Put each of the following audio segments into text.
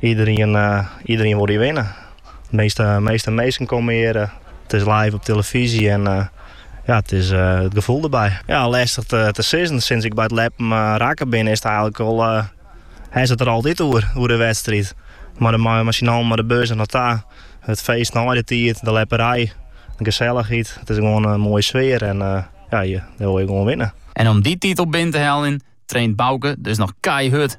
Iederien wol hjir winne. Measte, measte minsken komme hjir. It is live op tillefyzje en ja, it is it gefoel derby. Ja, lestich te sizzen. Sints ik by it ljeppen rekke bin is it eigenlik al. Hast it der altyd oer, oer de wedstriid. Mei de man massaal mei de bus der nei ta. It feest nei de tiid, de ljepperij, de gesellichheid. It is gewoan in moaie sfear en ja, dêr wol je gewoan winne. En om dy titel binnen te heljen, traint Bauke dus noch keihurd.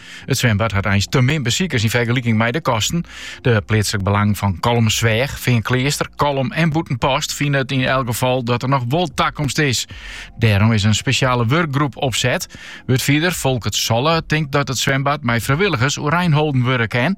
It swimbad hat eins te min besikers yn fergeliking mei de kosten. De pleatslik belangen fan Kollumersweach, Feankleaster, Kollum en Bûtenpost fine yn elk gefal dat der noch wol takomst is. Dêrom is in spesjale wurkgroep opset. Wurdfierder Folkert Solle tinkt dat it swimbad mei frijwilligers oerein holden wurde kin.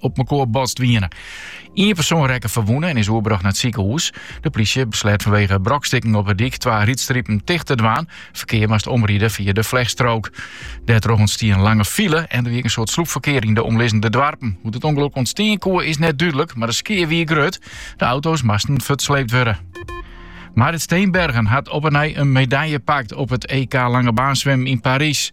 op elkoar botst wiene. Ien persoon rekke ferwûne en is oerbrocht nei it sikehûs. De plysje besleat fanwege brokstikken op de dyk twa rydstripen ticht te dwaan. Ferkear moast omride fia de flechtstrook. Dêrtroch ûntstie in lange file en der wie in soad slûpferkear yn de omlizzende doarpen. Hoe't it ûngelok ûntstean koe is net dúdlik, mar de skea wie grut. De auto's moasten fuortsleept wurde. Marit Steenbergen hat op 'e nij in medalje pakt op it EK Langebaansswimmen yn Parys.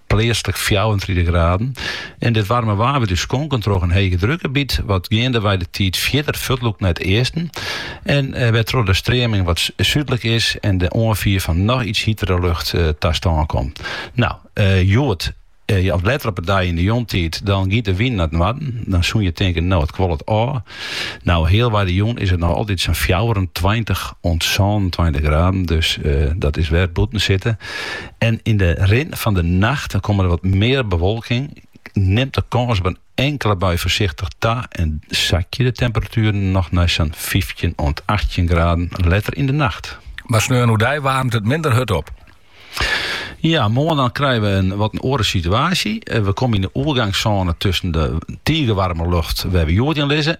pleatslik fjouwerentritich graden, en dat waarme waar wurdt ús skonken troch in hegedrukgebiet wat geandewei de tiid fierder fuortlûkt nei it easten en wêrtroch't de streaming wat súdlik is en de oanfier fan noch iets hitere lucht ta stân komt. No, hjoed as letter op 'e dei yn 'e jûntiid dan giet de wyn nei it noarden, dan soene je tinken, no it kuollet ôf. No, healwei de jûn is it noch altyd sa'n fjouwerentweintich oant sânentweintich graden, dus dat wurdt wer bûten sitte En yn de rin fan de nacht komme der wat mear bewolking, nimt de kâns op in inkele bui foarsichtich ta en sakje de temperatueren noch nei sa'n fyftjin oant achttjin graden letter yn de nacht. Mar sneon oerdei waarmt it minder hurd op. Ja, moarn dan krije we in wat in oare situaasje. We komme yn de oergangssône tusken de tige waarme lucht wêr't we hjoed yn lizze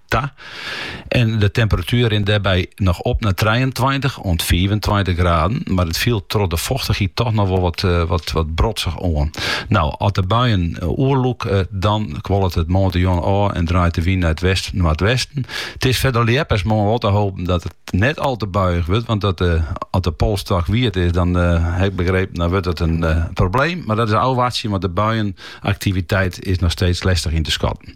ta. En de temperatuer rint dêrby noch op nei 23 oant 25 graden. Mar it fielt troch de fochtichheid toch noch wol wat, eh, wat, wat brodzich oan. Nou, at de buien eh, oerlûke, eh, dan kuollet it moarntejûn ôf en draait de wyn nei it west-noardwesten. It is foar de ljeppers moarn wol te hoopjen dat it net al te buiich wurdt. Want dat, eh, at de polsstôk wiet is, dan eh, ha ik begrepen, dan wurdt it in eh, probleem. Mar dat is ôfwachtsje, want de buie-aktiviteit is noch steeds lestich yn te skatten.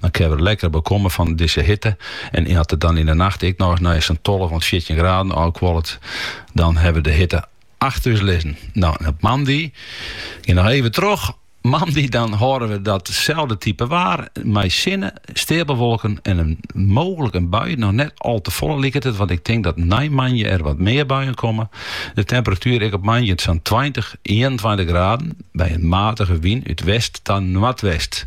Dan kinne we lekker bekomme fan dizze hitte. En as it dan yn 'e nacht ek noch nei sa'n tolve oant fjirtjin graden ôfkuollet, dan hawwe we de hitte achter ús lizzen. No, en op moandei, gean noch even troch, moandei dan hâlde we datselde type waar mei sinne, steapelwolken en mooglik in bui, noch net al te folle liket it, want ik tink dat nei moandei der wat mear buien komme. De temperatuer ek op moandei sa'n tweintich, ienentweintich graden, by in matige wyn út west ta noardwest.